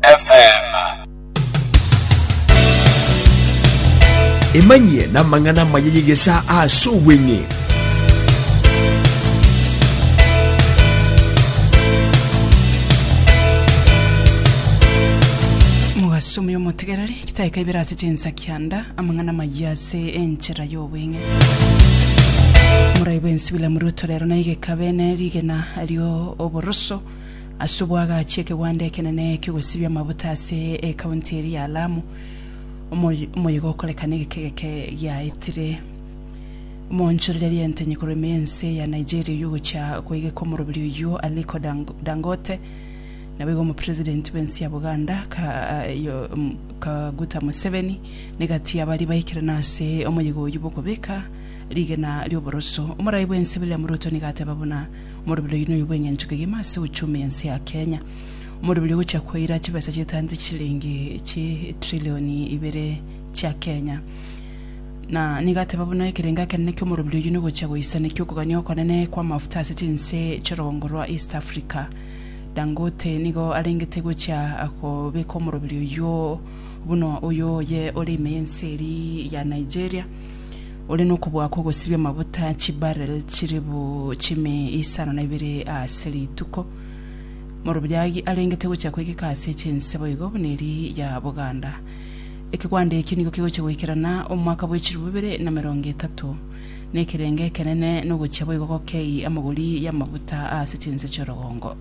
FM. Emanyie namang'ana amaya y'egesaa ase obweng'e. Mogasumi omotegereri, chitaika ibere ase chinsa kianda, amang'ana amaya ase enchera y'obweng'e. Morai bwensi William Ruto rero naigekabe ne rigena rio oboroso Ase obwo agachia ekegwanda ekenene ki'ogosibia amabuta ase ekaunti eria ya Lamu, omoyega okorekana egekegeke giaetire. Omoonchorereria entenyi korwa ime y'ense ya Nigeria oyio ogochia koegeka omorobiri oyio Aliko Dangote, naboigo omopresidenti bw'ense ya Buganda Kaguta Museveni negati y'abaria baikirana ase omoyega oyio bw'okobeka rigena ri'oboroso. Omoraai bw'ense William Ruto nigo ateba buna, Omorobiri oyio noyo bw'engencho kegima ase ochumi ense ya Kenya. Omorobiri ogochia koira chibesa chietangete chichilingi chi trilioni ibere chia Kenya. Na nigo ateba buna ekerengo ekenene ki'omorobiri oyio nogochia goisanekia okogania okonene kw'amafuta ase chinse chi'orogongo rwa East Africa. Dangote nigo arengete gochia kobeka omorobiri oyio buna oyo oye ore ime y'ense eria ya Nigeria. ore nokobua kw'ogosibia amaguta chibarrel chiribu chimi isano na ibere ase rituko. Morobiagi arengete gochia kwegeka ase chinse boigo buna eri ya Buganda. Ekegwanda eki nigo kegochia goikerana omwaka bwe chiribu ibere na emerongo etato. Nekerenge ekenene nogochia boigo gokei amagori y'amaguta ase chinse chi'orogongo.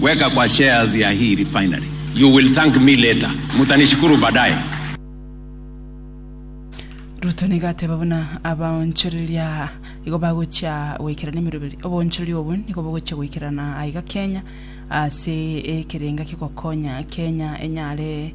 Weka kwa shares ya hii refinery you will thank me later mutanishukuru baadaye. Ruto nigo ateba buna abaonchoreria aa igo bagochia goikerana emeroberi. Oboonchoreria obwo nigo bogochia goikerana aiga Kenya ase ekerenga ki'ogokonya Kenya enyare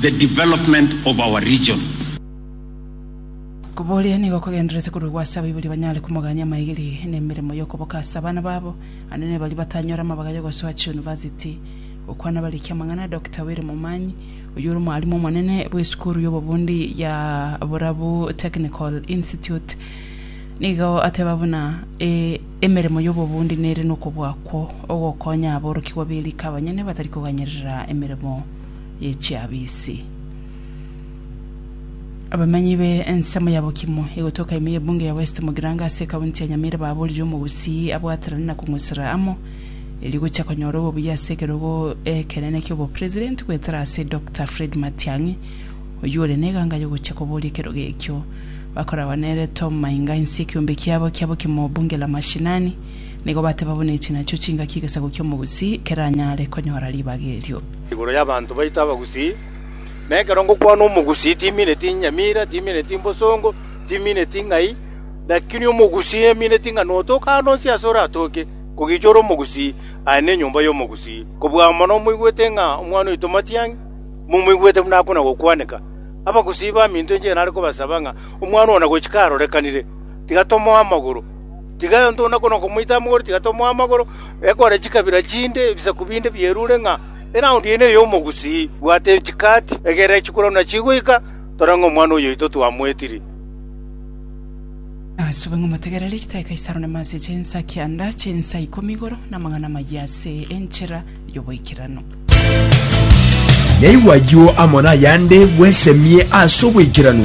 the development of our region. Koboria nigo kogendererete korwa gwa ase abaibori banyare komogania amaegeri na emeremo y'okoboka ase abana babo, naende ne baria batanyora amabaga y'ogosoa chiunivasiti. Gokwana bariki amang'ana Doctor Willy Momanyi, oyio ore omwarimu omonene bw'esukuru y'obobundi ya Borabu Technical Institute nigo ateba buna emeremo y'obobundi nere nokobua kwo ogokonya aborokigwa be rika abanyene batari koganyerera emeremo ye chiabisi. Abamanyi be ensemo ya Bokimo egotoka ime ye bunge ya West Mugirango ase ekaunti ya Nyamira baborire omogusii abwaterane na kong'usera amo erio gocha konyora obobuya ase ekerogo ekenene kiobo president goetera ase Doctor Fred Matiang'i oyio ore neganga yogocha koboria ekerogo ekio bakoragwa nere Tom Mainga inse ekiombe kiabo kia Bokimo bunge la mashinani nigo bateba buna echi nachio chingaki egesaku kiomogusii keranyare konyora ribaga erio. igoro y'abanto baito abagusii, na ekero ngokwana omogusii timineti inyamira, timineti imbosongo, timineti ng'ai, lakini omogusii emineti ng'a notoke aande onsi aase oratoke, kogicha ore omogusii, aye nenyomba y'omogusii. Kobua amo nomoigwete ng'a omwana oito Matiang'i, momoigwete buna akona gokwaneka, abagusii baminto inche nare kobasaba ng'a omwana oo na gochika arorekanire, tiga tomoe amagoro. Tiga aye ontong'une okwo nokomoita amagoro, tiga tomoe amagoro, ekore chikabira chinde ebisaku binde bierure ng'a eraundi eye neye omogusii. Bwata echikati, egerera echikura buna chigoika, tore ng'a omwana oyoito twamoetiri. Asube ng'a omotegereri, ritae Kaisaro nemase eche ensa kianda chinsa ikomi igoro namang'ana amayia ase enchera y'oboikeranu. Yaigwa ayio amo nayande, bwesemie ase oboikeranu.